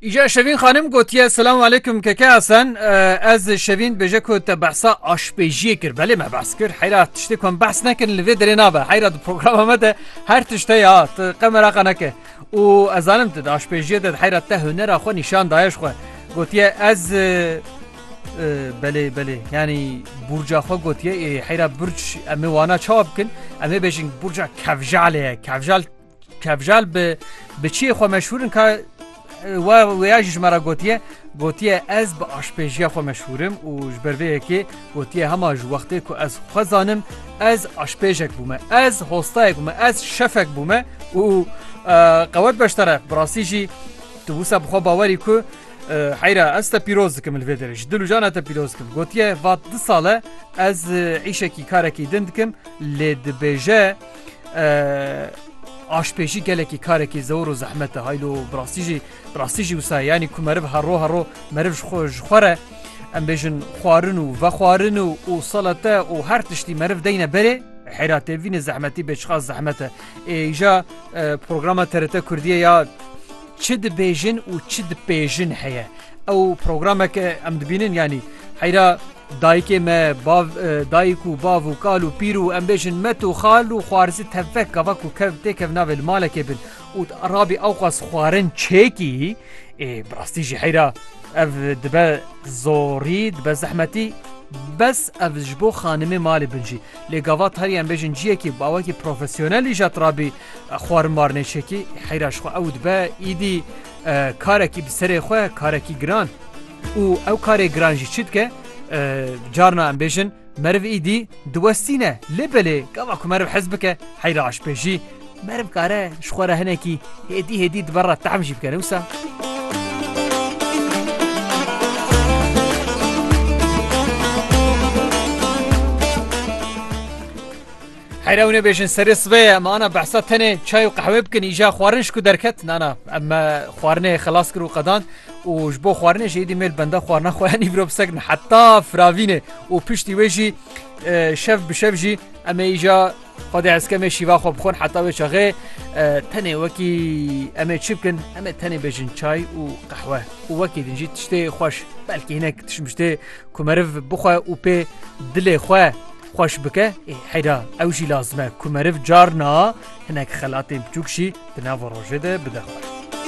Îja Şevîn xanim gotiye Selam aleykum keke Hasan ez Şevîn bêje ku te behsa aşpêjiyê kir belê me behs kir heyra tiştê ku em behs nekirin li vê derê nabe heyra di programa me de her tişte ya tu qemera qeneke û ezanim tu aşpêjiyê de heyra te hunera xwe nîşan dayeş xwe gotiye ez belê belê yanî burca xwe gotiye heyra burç em ê wana çawa bikin em ê bêjin burca kevjalê ye kevjal Kevjal bi bi çiyê xwe meşhûr in ka we wêya jî ji me re gotiye gotiye ez bi aşpêjiya xwe meşhûrim û ji ber vê yekê gotiye hema ji wextê ku ez xwe zanim ez aşpêjek bûme ez hostayek bûme ez şefek bûme û qewet beştere bi rastî jî tu wisa bi xwe bawerî ku heyra ez te pîroz dikim li vê derê ji dil û jana te pîroz dikim gotiye vat di sale ez îşekî karekî din dikim lê dibêje aşpêjî gelekî karekî zewr û zehmete haylo birastî jî birastî jî wisa yanî ku meriv herro herro meriv ji xwe ji xwe re em bêjin xwarin û vexwarin û û salete û her tiştî meriv deyne berê hêra têvîne zehmetî bêçixa zehmete êja programa terete Kurdiye ya Çi dibêjin û çi dipêjin heye. Ew programeke em dibînin yanî heyra dayikê me bav dayik û bav û kal û pîr û em bêjin met û xal û xwarizî tevvek gava ku kev têkev navê li malekê bin û rabî ew xas xwarin çêkî ê bi rastî jî heyra ev dibe zorî dibe zehmetî bes ev ji bo xanimê malê bin jî lê gava tarî em bêjin ciyekî bawekî profesyonelî jat rabî Xwarin Marnê Şekî heyra ji xwe ew dibe îdî karekî bi serê xwe karekî giran û ew karê giran jî çi dike carna em bêjin meriv îdî diwestîne lê belê gava ku meriv hez bike heyra aşpêjî meriv kare ji xwe re hinekî hêdî hêdî di ber re tehm jî bike ne wisa Heyr ew nebêjin serê sibê em ana behsa tenê çay û qehwê bikin îja xwarin ji ku derket nana em me xwarinê xilas kir û qedand û ji bo xwarinê jî êdî mêl benda xwarina xweya nîvro bi sekrin heta firavînê û piştî wê jî şev bi şev jî em ê îja Xwedê eskemê şîva xwe bixwin heta wê çaxê tenê wekî em ê çi bikin em ê tenê bêjin çay û qehwe û wekî din jî tiştê xweş belkî hinek tişmiştê ku meriv bixwe û pê dilê xwe Xweş bike ê heyra ew jî lazim e ku meriv carna hinek xelatên biçûk jî di nava rojê de bide xwe.